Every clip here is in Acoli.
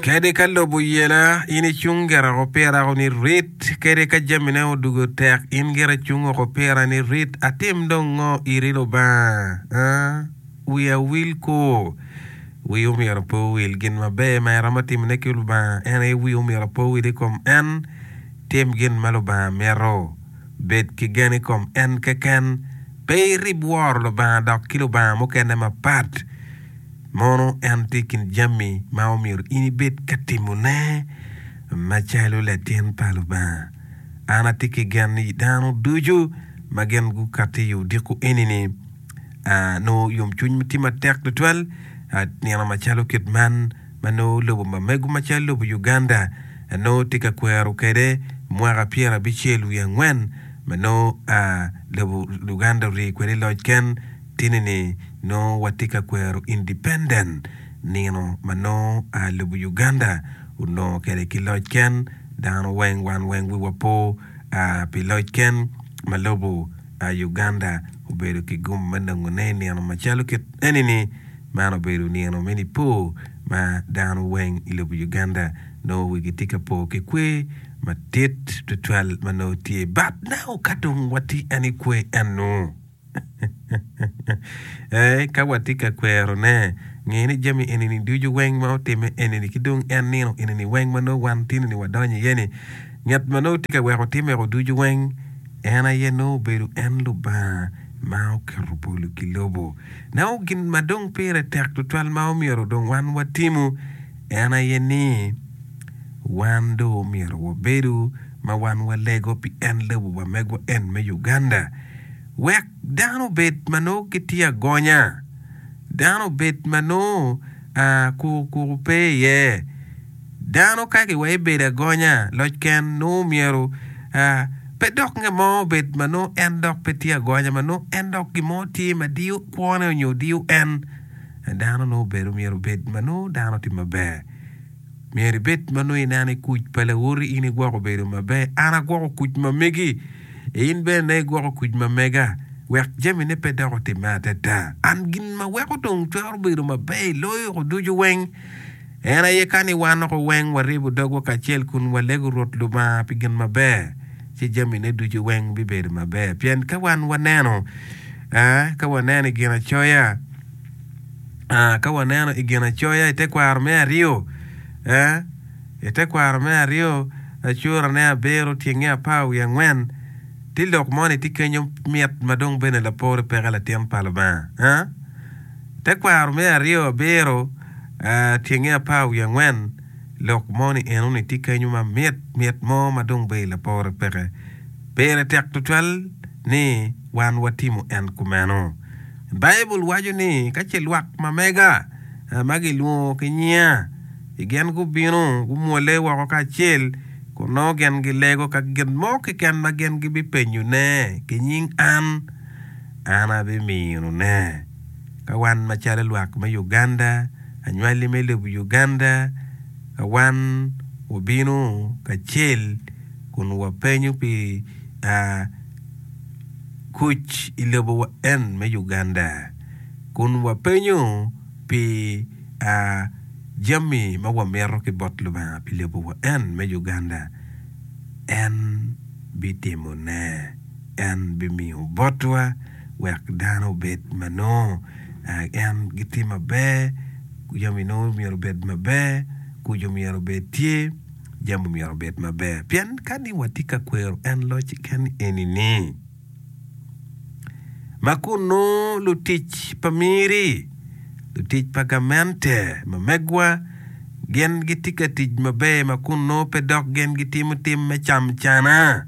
Kadi ka lobo yela, in icung gire woko pira woko ni rit, kadi ka jamine odugo tek, in gire icung woko pira ni rit. Atim dong ngo iri Lubanga? A? Wiya wil koo? Wii omyero pe owil. Gin maber ma iromo timone ki Lubanga en aye wii omyero pe owil i kom en. Tim gin ma Lubanga mito. Bed ki gen i kom en keken. Pe irib woro Lubanga dok ki lubanga mukene mapat. Mono en tye i kin jami ma omyero in ibed ka timone macalo latin pa Lubanga? An atye ki gen ni dano ducu ma gin gukato i odiko eni-ni nongo yomcwiny ma tye matek tutwal. Nino macalo kit man ma nongo lobo ma mego macalo lobo Uganda nongo tye ka kwero kwede mwaka pyerabicel wiye angwen ma nongo lobo Uganda orii kwede i loc ken, Tinini nongo watye ka kwero independent nino ma nongo a lobo Uganda onongo kwede ki loc ken dano weng wan weng wiwa po a pi loc ken ma lobo a Uganda obedo ki gum me nongone inino macalo kit enini man obedo nino me nipo ma dano weng ilobo Uganda nongo wigi tye ka po ki kwe matit twatwal ma nongo tye but now kadong watye en ikwe enu. Ee, ka watye ka kwerone, nge ni jami eni-ni ducu weng ma otimme eni-ni ki dong en nino eni-ni weng ma nongo wan tini-ni wadonyo iye-ni, Ngat ma nongo tye ka weko timmego ducu weng, en aye nongo obedo en Lubanga ma oketo polo ki lobo. Nongo gin ma dong pire tek tutwal ma omyero dong wan watimu en aye ni, wan dong omyero wabedu ma wan walego pi en lobo wamegwa en me Uganda. wek dano obed ma nongo gitye agonya, dano obed ma nongo koko koko pe iye. Dano ka kiweko ebedo agonya loc ken nongo myero pe dok nge mo obed ma nongo en dok pe tye agonya ma nongo en dok gin mo tye ma diyo kwone nyo diyo en. Dano nongo obedo myero obed ma nongo dano tye maber. Myero ibed ma nongo ineno ni kuc pa lawoti in igwoko bedo maber. An agwoko kuc ma megi, in bene nongo igwoko kuc ma mega, wek jamine pe dok otimme adada. An gin ma weko dong twero bedo maber i loyo ko ducu weng, en aye ka ni wan doko weng waryebo dogwa kacel kun walego Rwot Lubanga pi gin maber, ci jamine ducu weng bibedo maber. Pien ka wan waneno, ee, ka waneno i Ginacoya, Ka waneno i Ginacoya i tekwaro me aryo, i tekwaro me aryo acurane abiro, tyenge apar wiye angwen, tye lok moni tye kenyo mit ma dong bene lapore peke latin pa Lubanga. Tekwaro me aryo abiro, tyenge apar wiye angwen, lok moni enoni tye kenyo ma mit mit mo ma dong bene lapore peke. Pire tek tutwal ni wan watimo en kumeno. Baibul waco ni ka ce lwak ma mega ma gilwongo ki nyinga i gin gubino, gumwolle woko kacel, kun nongo gin gilego ka gin mo keken ma gin gibipenyone ki nying an, an abiminone. Ka wan macalo lwak me Uganda, anywali me lobo Uganda, ka wan wabino kacel kun wapenyo pi kuc i lobo wa en me Uganda kun wa penyo pi a jami ma wa mito ki bot Lubanga pi lobo wa en me Uganda en bi timo ne en bi miyo bot wa wek dano obed ma nongo a en gi tye maber jami nongo myero obed maber kuc myero obed tye Jami omyero obed maber pien ka ni watye ka kwero en loc keken eni ni, ma kunnu lutic pa miri, lutic pa gamente, ma megwa, gin gitye ka tic maber ma kunnu pe dok gin gitimo tim me cam cana.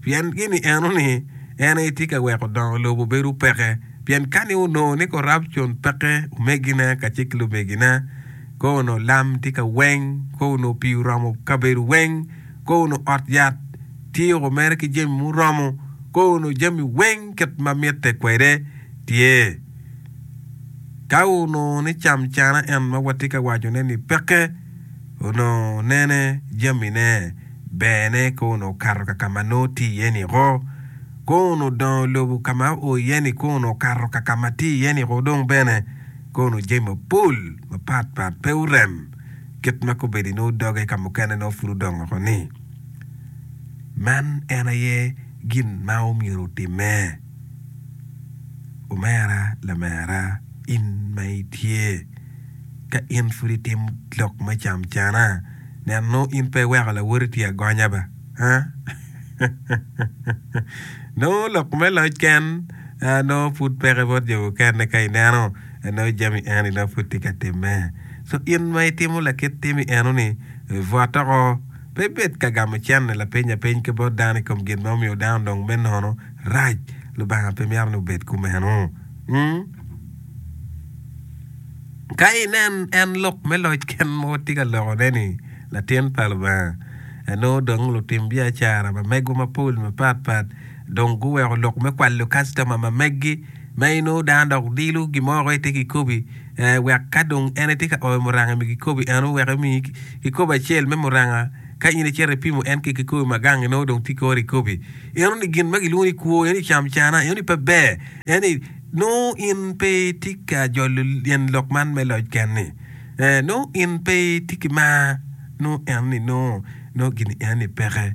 pien gini eno ni en aye tye ka weko dongo lobo bedo peke. Pien kani onongo ni korapcon peke omegine kacel ki lumegine, kong onongo lam tye ka weng, kong onongo pii oromo kabedo weng, kong onongo ot yat tye o mere ki jami muromo, kong onongo jami weng kit ma mitte kwede tye. Ka onongo ni cam cana en ma watye ka wacone-ni peke, onongo nene jamine, berne kun okato ka ka ma nongo tye iye-ni ko, kun odongo lobo ka ma oo iye-ni kun okato ka ka ma tye iye-ni ko dong bene. Kono jami mapol mapat pat pe orem kit ma kobedo-ni nongo doge ka mukene nongo pud odongo woko ni. Man en aye gin ma omyero otimme. Omera lamera in ma itye ka in pud itimo lok me cam cana nen nongo in pe iweko lawoti tye agonya ba aa nongo lok me loc ken nongo pud peke bot jo mukene ka ineno nongo jami eni nongo pud tye ka timme so in ma itimo lakit timi eno ni bwot oko. Pe ibed ka gamo cente lapeny apeny ki bot dano i kom gin ma omiyo dano odongo me nono. Rac! Lubanga pe mito ni wubed kumeno. Ka inen en lok me loc ken mo tye ka lokone ni latin pa Lubanga, anongo dong lutim biacara ma megwa mapol mapat pat dong guweko lok me kwalo kastoma ma meggi ma inongo dano dok dilo gin mo woko itye kikobi. wek ka dong en etye ka oyo muranga mi kikobi en owek emi kikobi acel me muranga ka in icito ipimo en ki kikobi ma gang inongo dong tye kore ikobi eno ni gin ma gilwongo ni kwo eno ni cam cana eno ni pe ber eno ni nongo in pe itye ka jolo tyen lok man me loc ken ni nongo in pe itye ki mar nongo eno ni nongo gini eno ni peke.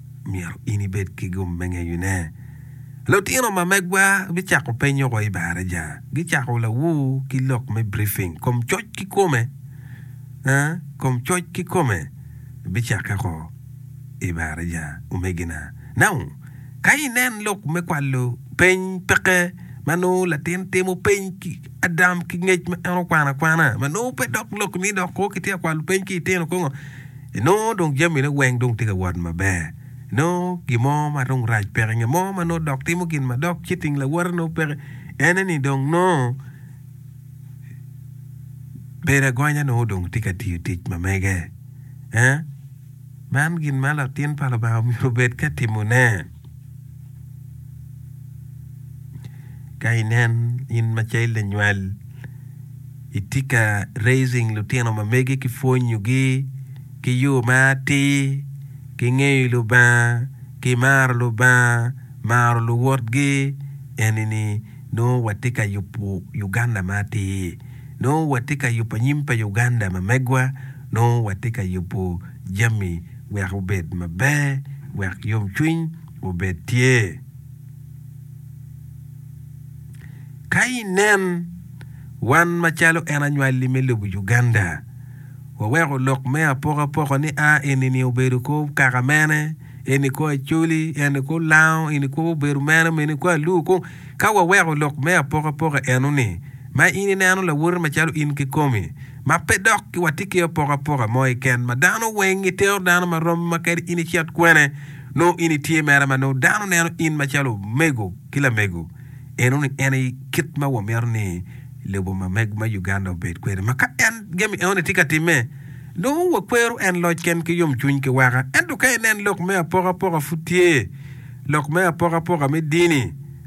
myero in ibed ki gum me ngeyone. Lutino ma megwa bicako penyo wa i baraja. Gicako lawur ki lok me briefing. Kom coc kikome, aa, kom coc kikome bicakke ko i baraja, omegina. Now, ka inen lok me kwalo peny peke ma nongo latin timo peny ki adam ki ngec ma en okwano akwana, ma nongo pe dok lok ni dok ko kitye ka kwalo peny ki litino kongo, Inongo dong jamine weng dong tye ka wot maber. Inongo gin mo ma dong rac peke. Ngat mo ma nongo dok timo gin ma dok ci ting lawote nongo peke. Ene ni dong nongo bedo agonya nongo dong tye ka tiyo tic ma mege. Man gin ma latin pa Lubanga myero obed ka timone. Ka inen in ma cal lanywal itye ka raising lutino ma megi ki pwonyogi ki yo ma atir ki ngeyo Lubanga ki maro Lubanga maro luwotgi enini nongo watye ka yubo Uganda ma atir nongo watye ka yubo anyim pa Uganda ma megwa nongo watye ka yubo jami wek obed maber, wek yomcwiny obed tye. Ka inen, wan macalo en anywalli me lobo Uganda, waweko lok me apokapoka ni a eni-ni obedo kor kaka mene, eni kor Acholi, eni kor Lango, eni kor obedo mene, eni kor Aluo kong. Ka waweko lok me apokapoka eno-ni, ma in ineno lawote macalo in kikomi, ma pe dok watye ki apokapoka mo keken ma dano weng gitero dano ma romi ma kadi in icit kwene nongo in itye mere ma nongo dano neno in macalo omego ki lamego eno ni en aye kit ma wamito ni lobo ma mego ma Uganda obed kwede ma ka en jami eno ni tye ka timme nongo wakwero en loc ken ki yom cwiny ki waka ento ka inen lok me apokapoka pud tye lok me apokapoka me dini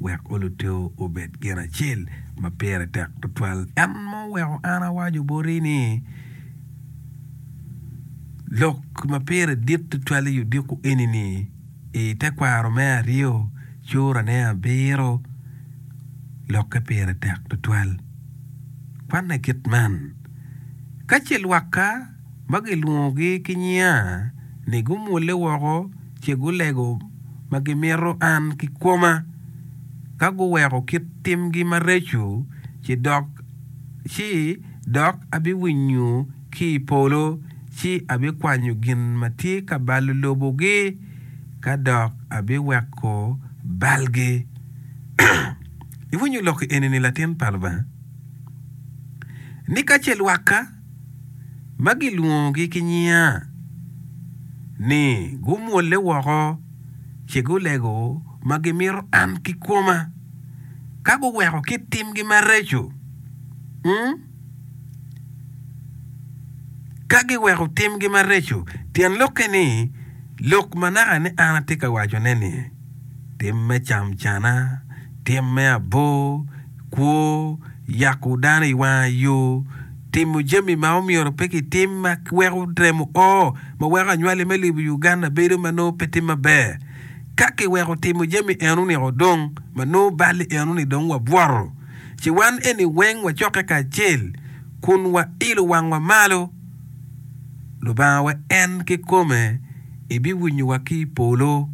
wek oluteo obed gin acel ma pire tek tutwal. En ma oweko an awaco boti ni, Lok ma pire dit tutwal i odiko eni-ni, i tekwaro me aryo, curane abiro, lokke pire tek tutwal. Kwanne kit man, Ka ce lwakka, ma gilwongogi ki nyinga, ni gumwolle woko ce gulego ma gimito an ki koma, ka guweko kit timgi mareco, ci dok, ci dok abiwinyo ki i polo, ci abikwanyo gin ma tye ka balo lobogi, ka dok abiweko balgi. Iwinyo lok-ki eni-ni, latin pa Lubanga? Ni ka ce lwakka. ma gilwongogi ki nyinga, ni gumwolle woko ci gulego ma gimito an kikoma, ka guweko kit timgi mareco, um, ka giweko timgi mareco. Tyen lokke-ni, lok ma naka ni an atye ka wacone-ni. tim me camcana, tim me abor, kwo, yako dano i wanga yo, timo jami ma omyero pe kitim ma weko remo o ma weko anywali me lobo Uganda bedo ma nongo pe tye maber. Ka kiweko timo jami eno-ni o dong ma nongo bal-li eno-ni dong wabwoto ci wan eni weng wacokke kacel kun wailo wangwa malo. Lubanga wa en kikome ebiwinyo wa ki i polo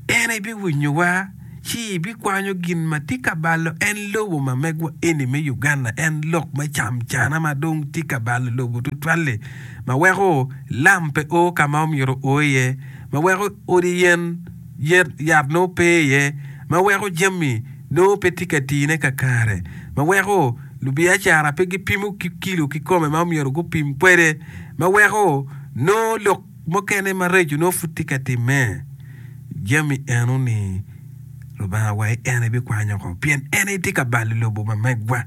en ebiwinyo wa ci ebikwanyo gin ma tye ka balo en lobo ma megwa eni me Uganda en lok me cam cana ma dong tye ka balo lobo tutwali ma weko lam pe o ka ma omyero o iye ma weko odi yen yat nongo pe iye ma weko jami nongo pe tye ka tine kakare ma weko Lubiacara pe gipimo ki kilo kikome ma omyero gupim kwede, ma weko nongo lok mukene mareco nongo pud tye ka timme. Jami eno-ni Lubanga wa en aye bikwanyo oko, pien en aye tye ka balo lobo ma megwa.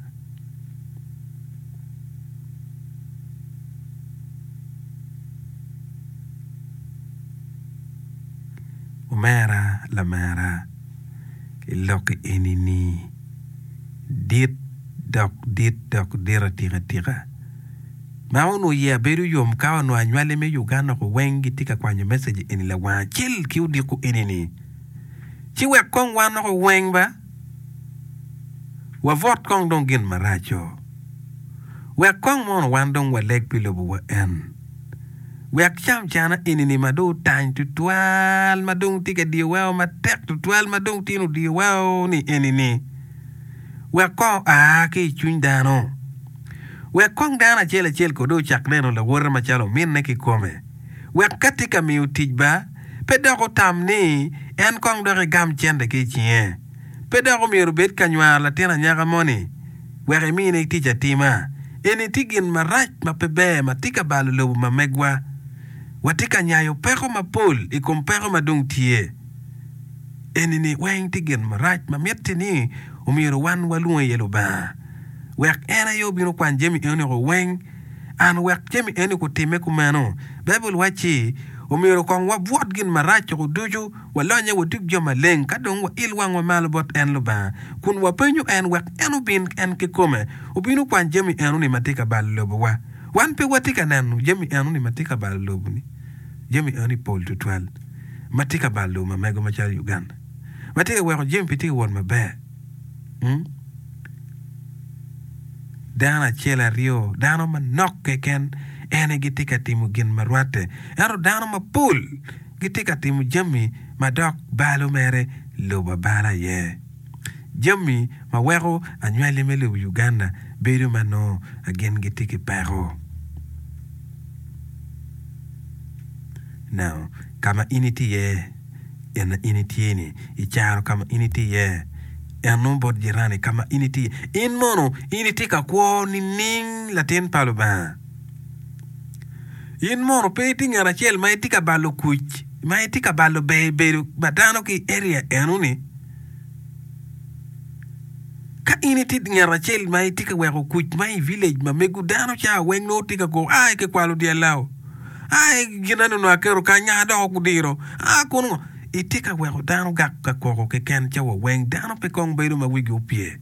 Omera lamera, ilok i eni-ni. dit dok dit dok dit atika tika. Ma onongo iye abedo yom ka onongo anywali me Uganda ko weng gitye ka kwanyo message eni lawang acel ki odiko eni ni. Ci wek kong wan ko weng ba wabot kong dong gin maraco. Wek kong mono wan dong waleg pi lobo wa en. Wek cam cana enini ma dong otany tutwal ma dong tye ka diyo weko matek tutwal ma dong tin odiyo weko ni enini, wek kong oa ki i cwiny dano, wek kong dano acel acel kodi ocak neno lawote macalo ominne kikome, wek ka tye ka miyo tic ba, pe dok otam ni en kong dok egam cente ki i cinge, pe dok omyero obed ka nywaro latin anyaka moni. wek imine tic atima. Eni tye gin marac ma pe ber ma tye ka balo lobo ma megwa. Watye ka nyayo peko mapol i kom peko ma dong tye. Eni-ni weng tye gin marac ma mitte ni omyero wan walwong iye Lubanga, wek en aye obin okwan jami eno-ni weng. An wek jami eno-ni kutimme kumeno, Baibul wacci, Omyero kong wabwot gin marac-cu ducu, Walonye watub jo maleng ka dong wail wangwa malo bot en Lubanga, kun wapenyo en wek en obin en kikome obin okwan jami enoni ma tye ka balo lobowa. Wan pe watye ka neno jami enoni ma tye ka balo lobo-ni. Jami enoni pol tutwal ma tye ka balo lobo ma mego macalo Uganda ma tye ka weko jami pe tye ka wot maber. Dano acel aryo dano manok keken en aye gitye ka timo gin ma rwatte, ento dano mapol gitye ka timo jami ma dok balo mere lubo abala aye. Jami ma weko anywali me lobo Uganda bedo ma nongo gin gitye ki peko. Now, ka ma in itye iye, in ma in itye ni, i caro ka ma in itye iye, en nongo bot jirani ka ma in itye iye, in mono in itye ka kwo nining latin pa Lubanga? In mono pe itye ngat acel ma itye ka balo kuc ma itye ka balo ber i bedo pa dano ki i area enoni? Ka in itye ngat acel ma itye ka weko kuc ma i village ma mego dano ca weng nongo tye ka koko ai kikwalo dyel lao, ai ginene onongo aketo kany aa dok gudiro, aa kono ngo, itye ka weko dano gak ka koko keken ca wa weng dano pe kong bedo ma wigi opye.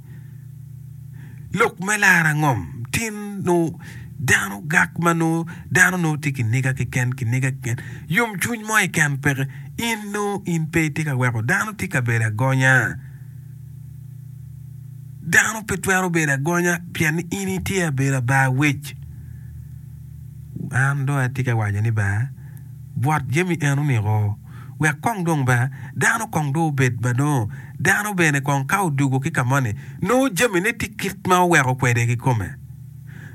lok me laro angom tin nongo dano gak ma nongo dano nongo tye ki niga keken ki niga keken yom cwiny mo keken peke in nongo in pe itye ka weko dano tye ka bedo agonya dano pe twero bedo agonya pien ni in itye ka bedo abar wec an dong atye ka waco ni baa bwot jami eno niko wek kong dong bene dano kong dong obed ma nongo dano bene kong ka odwogo ki ka moni nongo jamine tye kit ma oweko kwede kikome.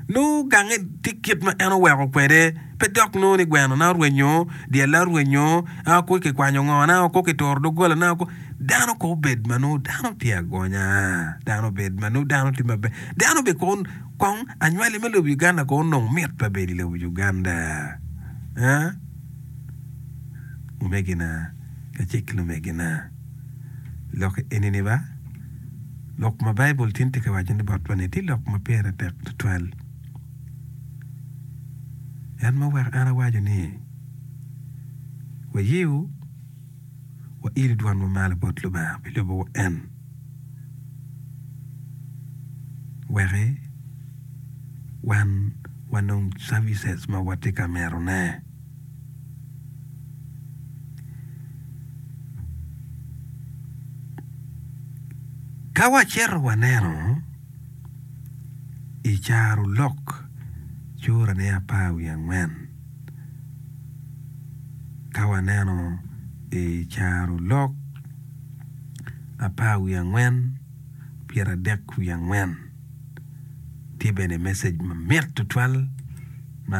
Nongo gange tye kit ma en oweko kwede pe dok nongo ni gwenona orwenyo, dyella orwenyo, aa ko kikwanyo ngo na, ko kituro doggola na, ko. Dano kong obed ma nongo dano tye agonya, dano obed ma nongo dano tye maber, dano bene kong kong anywali me lobo Uganda kong onongo mit pe bed i lobo Uganda. Aa? Lumegina kacel lumegina, lok enini ba, lok ma Baibul tin tye ka waco ni botwa ni tye lok ma pire tek tutwal. En ma oweko en awaco ni wayewu wailo dwanwa malo bot Lubanga pi lubo en. weke wan wanong services ma watye ka mitone. Ka wacito waneno i carolok curane apar wiye angwen ka waneno i carolok apar wiye angwen, pyeradek wiye angwen. Tye bene message mamit tutwal ma.